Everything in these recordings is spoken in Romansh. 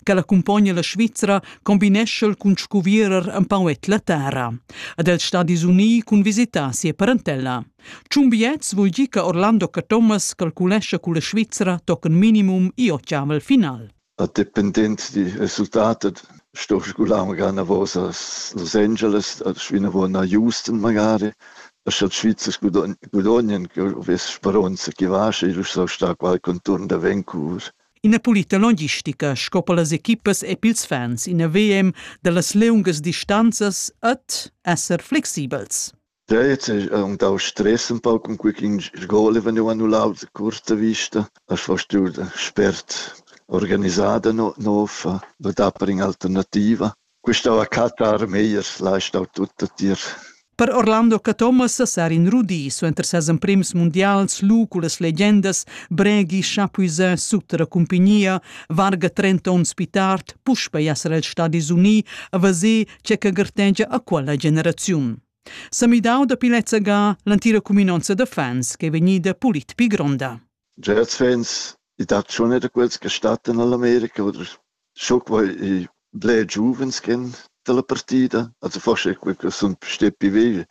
ch'el accumpogna la Svizra combinescha el cun scuvierer empau et la terra. Ad els Stadis Unii cun visitar sia parentella. Tschun biets vul dir che Orlando Cathomas calculescha con la Svizra tochen minimum i ottavel final. A dependent di resultatet sto sgular magari una volta Los Angeles, schwina wo na Houston magari, sche Schweizer gudanien, che vess speronza che vasce, il so sta qual conturn da Vancouver. Ina pulita logistica sco per las equipas e pils fans, ina VM dallas leungas distanzas et esser flexibels. Ja, jetzt ist und auch Stress ein paar um quick in Schule, wenn du annulau die kurze Vista, hast fast du sperrt organisada no, no, da bring alternativa. Quista la catta armeias l'ha stau tutta tier. Per Orlando Cathomas sar in rudi suenter ses emprims mundials lu cullas legendas Bregi chapuisà sut la cumpagnia varga 30 onns pi tard puspei esser els Stadis Uni a vaser che che gartegia a quella generaziun. Sa midau da pilezza ga l'antira cuminonza da fans che è vegnida pulit pi gronda. Jazz fans, i dat schon wieder quels che stattan all'America oder schon quei i bler giuvens chen dalla partida, also forse è quei che sun stetti vegl,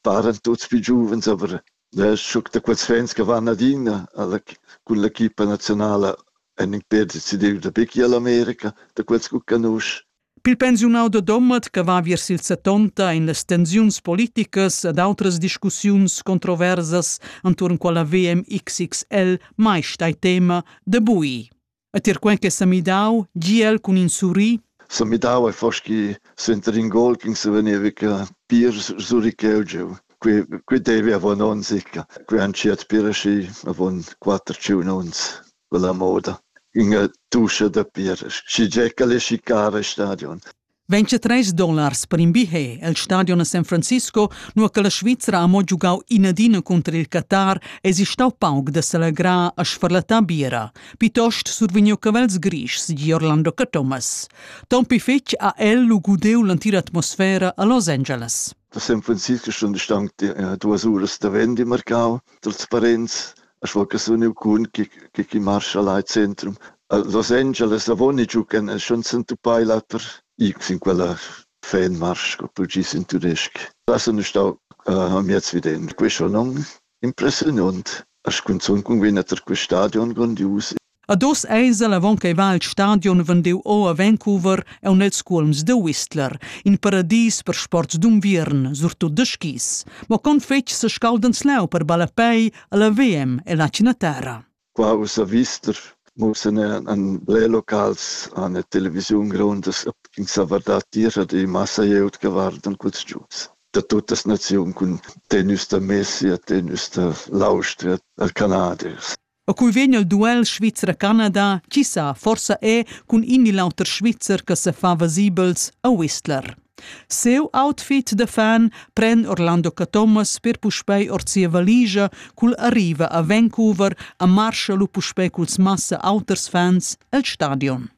paran tuts pli giuvens, aber ja es schon da quels fans che van adina alla cun l'equipa nazionala, han in perdit sidiu da bicchi all'America, da quels cu canusch. Pil pensiunau da Domat che va viers il settonta ein las tensiuns politicas ed outras discussiuns controversas entuorn quella VMXXL mai stai tema de bui. E tier quen che sa midau, giel cun in surri, se midava e foschi senter in gol che se veniva che pir suri cheu qui qui devi avon ons ecca qui han ciat pir aschi avon quatter ciun ons quella moda ünga duscha da pir, schi giè ch'el es chicar al stadion. 23 dollars per in billet al stadion a San Francisco, nua che la Svizra ha mo giugau inadina cunter il Qatar, es stau pauc da s'allegrar a sfarlattar biera, piuttost survegniu cavels grischs di Orlando Cathomas. Tompi fetg ha el lu gudeu l'entira atmosfera a Los Angeles. Da San Francisco sun stanc duas uras da vendi marcau, trasparenz, a fo che sun iu cun chi chi chi marscha là al centrum. Los Angeles avoni giu ch'en en schon s'entupai l'auter i sin quella fanmarsch co tu gis in tudesc. Là sun ü stau amiez viden. Quei schon non impressiunont. A scunzun cun vegnir tar quel stadion grondius Ad oz eisel avon ch'ei va il stadion vendiu o a Vancouver aun els cuolms da Whistler, in paradis per sports d'unviern, surtut da skis. Mo con fetg sescaldans leu per ballapei alla VM e la Cinatera. Qua uss a Whistler mussen an ble locals an der Television grondas ins a vardat tier die Masse jeut gewarden culs giuts. Da tuttas naziun cun tennis da Messi a tennis da l'Austria, da Canadiers. A cui vegn il duel Svizra-Canada, chi sa, forsa è cun in il auter Svizzer che sa fa vasibels a Whistler. Seu outfit da fan pren Orlando Cathomas per puspei or sia valigia cul arriva a Vancouver a Marshall u puspei culs massa auters fans el stadion.